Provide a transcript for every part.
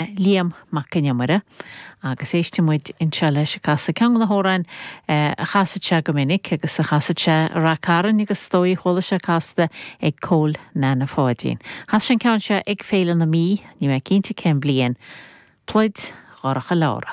Liam Mac Con Iomaire, agus éistfidh muid anseo leis ag casadh ceann de na hamhráin a chasadh sé go minic agus a chasadh sé i Ráth Cairn agus is dóigh chuala sé casta ag Cóil Neaine Pháidín. Chas sé an ceann seo ag Féile na Mí, níl mé cinnte cén bhliain. Pluid Dhorcha Leára.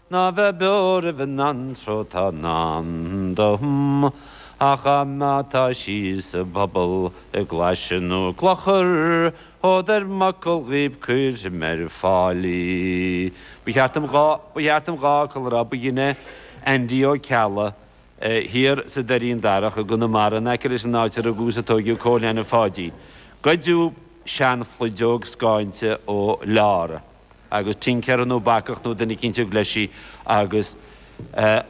Ná bheith beo roimh an anró atá i ndán dom, ach má tá sí sa bpobal i gclaise nó i gclochar, fód ar m'fhocal dhaoib cuirim ar fáil í. Ba cheart dom dhá, ba cheart dom dhá fhocal a rá, ba dhuine Aindí Ó Ceallaigh thiar sa Doirín Darach i gConamara in aice leis an áit ar rugadh is a tóigeadh Cóil Neaine Pháidín, goideadh seanphluideog scáinte ó Leára. agus tincéara nó bacach nó duine eicínt a thug leis í agus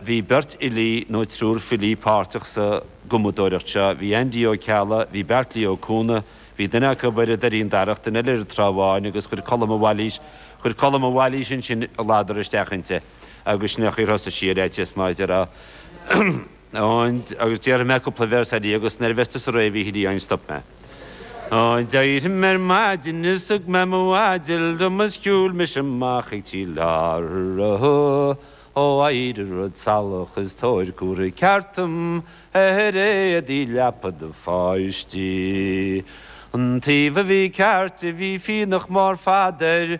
bhí beirt fhilí nó triúr filí páirteach sa gcumadóireacht seo, bhí Aindí Ó Ceallaigh, bhí Beartlaí Ó Cuanaigh, bhí duine acu ar an Doirín Darach, duine eile ar an Trá Bháin agus chuir Colm de Bhailís, chuir Colm de Bhailís ansin a ladar isteach inti agus sin é an chaoi ar thosaigh sí ar fhaitíos mar a deir an. Ond, agus déarfaidh mé cúpla véarsa di agus nuair a bheas tusa réidh, a Mhíchíl Fhiáin, stop mé. Ó, d'éirigh mé ar maidin is thug mé mo mhaide liom is shiúil mise amach ag tigh Leára, ó éirigh a rud salach is tabhair cumhdach ceart dom a oiread i leaba do pháistí. An taobh a bhí ceart de bhí fionnach mór fada air,